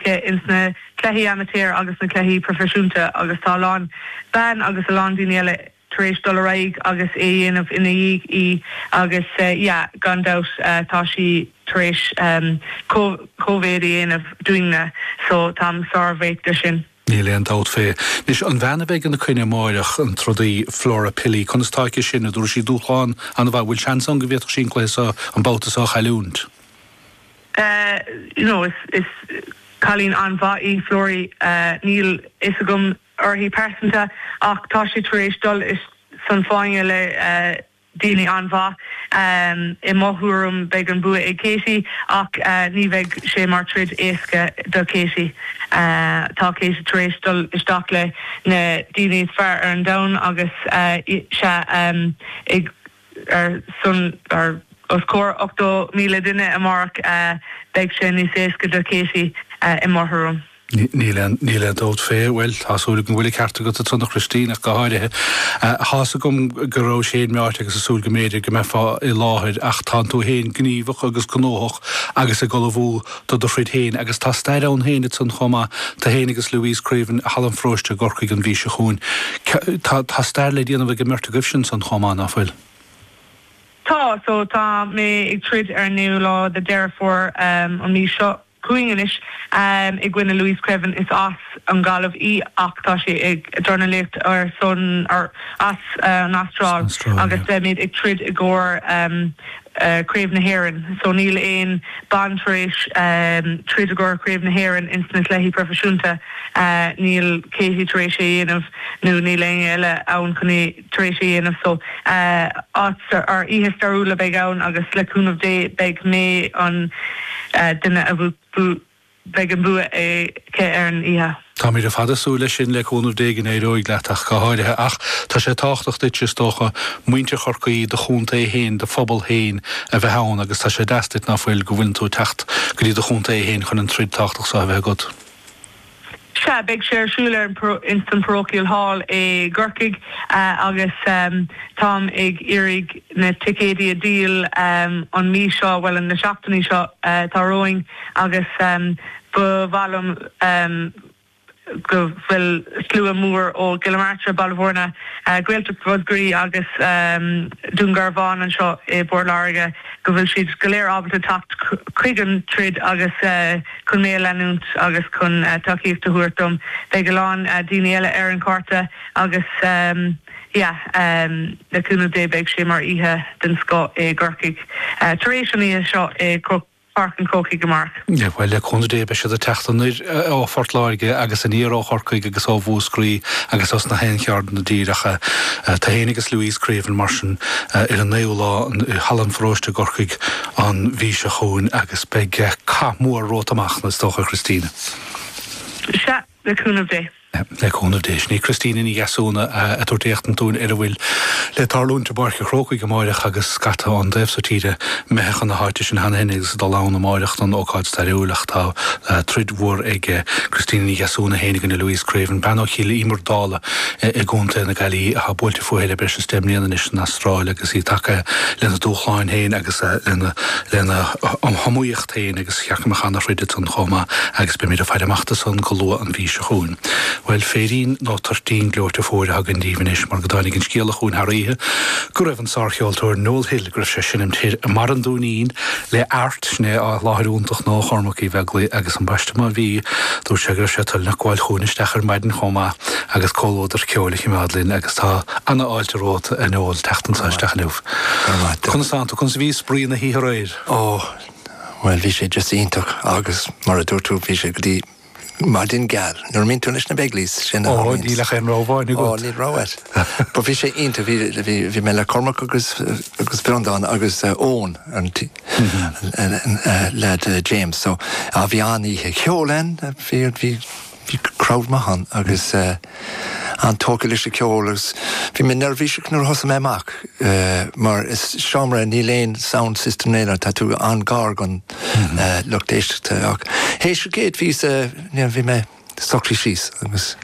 ins na cluichí amaitéir agus na cluichí proifisiúnta agus tá a lán ban agus a lán daoine eile tar éis dul ar aghaidh agus é a dhéanamh ina dhiaidh í agus yeah gan dabht tá sí tar éis comh-mhéad a dhéanamh dúinne so táim sár-bhuíoch de sin. Níl aon dabht fé. Anois, an bhean a bheidh ina coinne amáireach, an trodaí Flora Pili, conas tá aici sin? An dtabharfaidh sí dúshlán an-mhaith? Bhfuil seans ann go bhféadfadh sí an cluiche so, an babhta so a chailliúint? you know is is cailín an-mhaith í Florrie níl fhios agam uirthi pearsanta ach tá sí tar éis dul ins an fáinne le daoine an-mhaith i mo thuairim beidh an bua ag Katie ach ní bheidh sé mar troid éasca do Katie tá Katie tar éis dul isteach le na daoine is fearr ar an domhan agus sea i ar son or os comhair 80,000 duine amárach, beidh sé níos éasca do Katie i mo thuairim. Níl aon níl aon dabht fé, bhuel, tá súil agam go bhfuil an ceart agat ansan a Christina ach go háirithe. Tá's agam go raibh sé in m'áit agus ag súil go mb'fhéidir go mbeifeá i láthair ach tá tú fhéin gníomhach agus gnóthach agus ag ullmhú do do throid féin, agus tá stair ann féin ansan chomh maith, tú féin agus Louise Creaven, Halla an Pharóiste i gCorcaigh an mhí seo chugainn. Tá stair le déanamh ag an mbeirt agaibhse ansan chomh maith, ná fuil? Tá so tá mé ag troid ar an naoú lá de Dheireadh Fómhair an mhí seo chugainn anois i gcoinne Louise Creaven. Is as an Ghaillimh í ach tá sí ag dornálaíocht ar son, or, as an Astráil agus beimid ag troid i gcomhair. Craobh na hÉireann so níl aon bean tar éis troid i gcomhair Chraobh na hÉireann ins na cluichí proifisiúnta. Níl Katie tar éis é dhéanamh nó níl éinne eile ann chun é tar éis é dhéanamh so áit sa or oíche stairiúil a bheidh ann agus le cúnamh Dé beidh mé an duine a beidh an bua aici ar an oíche. Táimid ar fad ag súil leis sin, le cúnamh Dé, go n-éireoidh leat ach go háirithe. Ach tá sé tábhachtach duitse, is dócha, muintir Chorcaí, do chontae féin, do phobal féin a bheith ann agus tá sé deas duit, ná fuil, go bhfuileann tú ag teacht go dtí do chontae féin chun an troid tábhachtach seo a bheith agat. Sea, beidh sé ar siúl ar an, ins an Parochial Hall i gCorcaigh agus táim ag iarraidh na ticéidí a dhíol an mhí seo, bhuel, an na seachtainí seo atá romhainn agus ba mhaith liom go bhfuil slua mór ó Chill na Martra, Baile Mhúirne, Gaeltacht Mhúscraí agus Dún Garbhán anseo i bPort Láirge, go bhfuil siad go léir ábalta teacht chuig an troid agus. Chun mé a leanúint agus chun tacaíocht a thabhairt dom, beidh a lán daoine eile ar an gcárta agus yeah le cúnamh Dé beidh sé mar oíche den scoth i gCorcaigh tar éis an oíche seo i Páirc an Chrócaigh amárach. Yeah bhuel le cúnamh Dé beidh siad ag teacht anoir ó Phort Láirge agus aniar ó Chorcaigh agus ó Mhúscraí agus ós na haon cheard don dtír chugat. Tú fhéin agus Louise Creaven mar sin ar an 9ú lá i Halla an Pharóiste i gCorcaigh, an mhí seo chugainn agus beidh cath mór romhat amach anois, is dócha, a Christina. Sea, le cúnamh Dé. Le cúnamh Dé. Sin í Christina Ní Dheasúna ag tabhairt éachtaint dúinn ar a bhfuil le tarlúint i bPáirc an Chrócaigh amáireach agus scata ón dtaobh so tíre imithe chun na háite san cheana féin agus ag dul ann amáireach don ócáid stairiúil ach tá troid mhór ag Christina Ní Dheasúna féin i gcoinne Louise Creaven, bean ó Chill Íomair Dálaigh i gContae na Gaillimhe atá buailte fúithi le breis is deich mbliana san Astráil agus í tagtha lena dúshláin féin agus lena hiomaíocht féin agus sheachain mo cheann a throid ansan chomh maith agus beimid ag faire amach do san go luath an mhí seo chugainn. Bhuel, féirín nó toirtín gleoite fuar a thugaim díbh anois mar go dtáinig an scéala chugainn thar oíche go raibh an sárcheoltóir Noel Hill, go raibh sé ag seinnt i mBarr an Dúinín le Airt, sin é, an láthair iontach nua Chormaic Uí Bheaglaoich agus ambaiste má bhí, dúirt sé go raibh sé toilteanach gabháil chugainn isteach ar maidin chomh maith agus comhluadar ceoil a chimeád linn agus tá. Ana fháilte romhat a Noel teacht anso isteach inniu. Conas atá tú? Conas a bhí spraoi na hoíche aréir? Ó, bhuel, bhí sé just iontach agus mar a dúirt tú, bhí sé go dtí maidin geal. Nuair a mbíonn tú leis na Begleys, sin a tharlaíonns. Ó, níl ach aon rogha amháin agat. Ó, níl rogha agat. But bhí sé iontach, bhí mé le Cormac agus Breandán agus Eoin, an leaid James, so bhí an-oíche cheoil ann. Bhí crowd maith ann agus an-tógtha leis an ceol agus bhí mé neirbhíseach nuair a thosaigh mé amach mar is seomra, níl aon sound system aon rud, tá tú an-ghar don lucht éisteachta ach théis an chéad phíosa, you know, bhí mé socraithe síos agus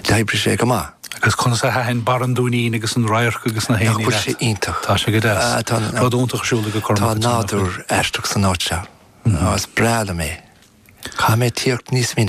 d'oibrigh sé go maith. Agus conas a thaitin Barr an Dúinín agus an radharc agus na héin leat? Nach bhfuil sé iontach? Tá sé go deas. Tá rud iontach ar siúl ag Cormac. Tá nádúr aisteach san áit seo. Is breá liom é. Caithfidh mé tíocht níos minice.